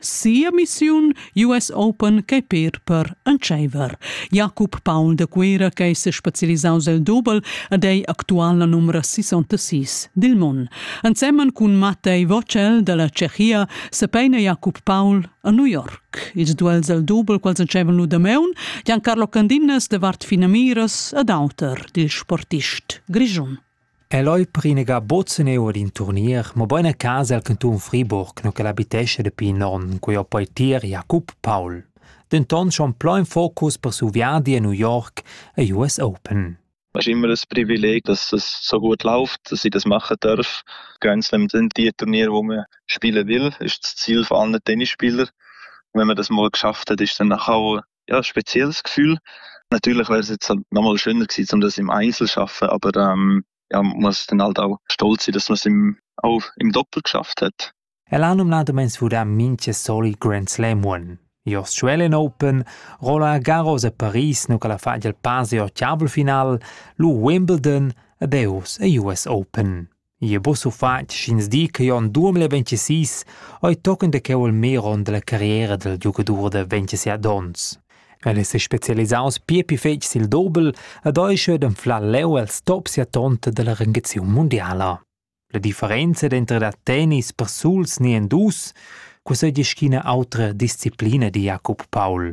sia missiun US Open ch'ei per per entscheiver. Jacob Paul de Cuira che se specialisaus el dobel ed ei actual la numero 66 dil mon. Ensemen cun Mattei Vocel dalla Cechia se peina Jacob Paul a New York. Ils duels el dobel quals entscheivan lu damaun, Giancarlo Candinas de Vart Finamiras ed auter dil sportist grischun. El ei prinegà buc seneu ad in turnier, mobein a casa el cantun Friburg, no ch'el habitescha dapi in onn, cun il poetier Jakob Paul, denton schon pli in focus per siu viadi a New York e US Open. Es immer ein Privileg, dass es so gut läuft, dass ich das machen darf. Grand Slam sind die Turniere, wo man spielen will, ist das Ziel von allen Tennisspielern. Wenn man das mal geschafft hat, ist dann nachher auch Ja, spezielles Gefühl. Natürlich wäre es jetzt halt noch mal schöner gewesen, um das im Einzel zu arbeiten, aber ähm, ja, man muss dann halt auch stolz sein, dass man es im, auch im Doppel geschafft hat. L'anum la domains furà minche soli Grand Slam one. Jos Australian Open, Roland Garros a Paris nu ca la fagia il pase o chiavel final, lu Wimbledon, ed eus e US Open. Jeu bus ufatg sch'ins di che jeu en duemila ventisís ei tochen da cheu il mer onn dalla carriera dal giugadur da ventiseit onns. El è sespecialisaus pia pli fetg sil dobel ed ei cheu d'anflar leu els top sia tonta dalla rengaziun mundiala. La differenza denter da tennis persuls ni en dus cusseglia sch'ina autra disciplina di Jacob Paul.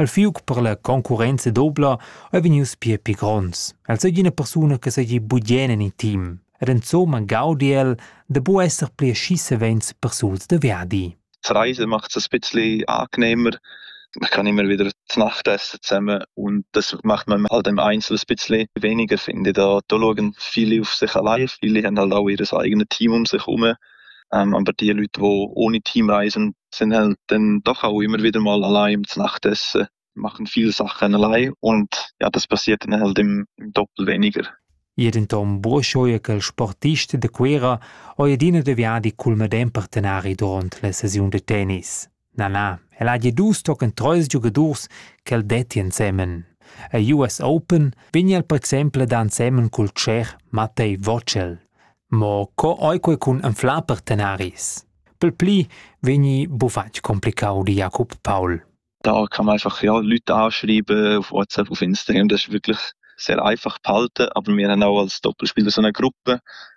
El fiug per la concurrenza dobla ei vegnius pia pli gronds. El seigi ina persuna che seigi bugien en in team ed insomma gaudi el da bu esser pli aschi savens persuls da viadi. Reisen macht es ein bisschen angenehmer. Man kann immer wieder zur Nacht essen zusammen und das macht man halt im Einzelnen ein bisschen weniger, finde ich. Da, da schauen viele auf sich allein, viele haben halt auch ihr eigenes Team um sich herum. aber die Leute, die ohne Teamreisen sind halt dann doch auch immer wieder mal allein zum Nachtessen, machen viele Sachen allein und ja, das passiert dann halt im, im Doppel weniger. Jeden tom buoschoi che il sportist de Cuera oi adina deviadi cul medem partenari durant la sesiun de tennis. Na, na, el hagi dus tochen treis giugadurs ch'el detti ensemen. Ei US Open pign el per exempel da ensemen cul tscher Mattei Vocel. Mo co ei quei cun anflar partenaris? Per pli vegni bufatg complicau di Jacob Paul. Da kann man einfach ja, Leute anschreiben auf WhatsApp, auf Instagram. Das ist wirklich sehr einfach behalten, aber wir haben auch als Doppelspieler so eine Gruppe,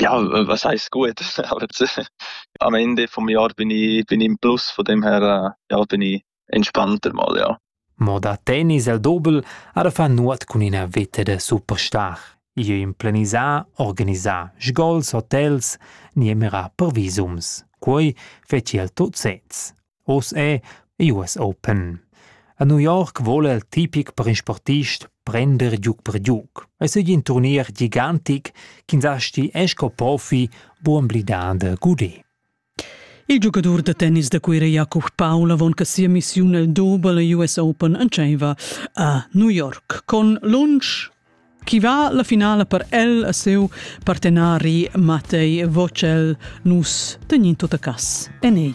Ja, was heisst gut? Am Ende vom Jahr bin ich, bin ich im Plus, von dem her äh, ja, bin ich entspannter mal, ja. Mo da tennis el dobel ara fa nuot cun ina veta da superstar. Io implenisà, organisà sgols, hotels, nie mira per visums. Quei feci el tot sez. Oz è ei uss open. A New York vole il tipic per in sportist prender giug per giug. E segli in turnier gigantic ch'ins asti è sco profi buon blidar da gudé. Il giugadur da tennis da Cuira Jakub Paul avon che sia missiun el Double US Open entscheiva a New York con lunsch Chi va la finala per el e siu partenari Matej Vocel nus tegnin tot a cas en ei.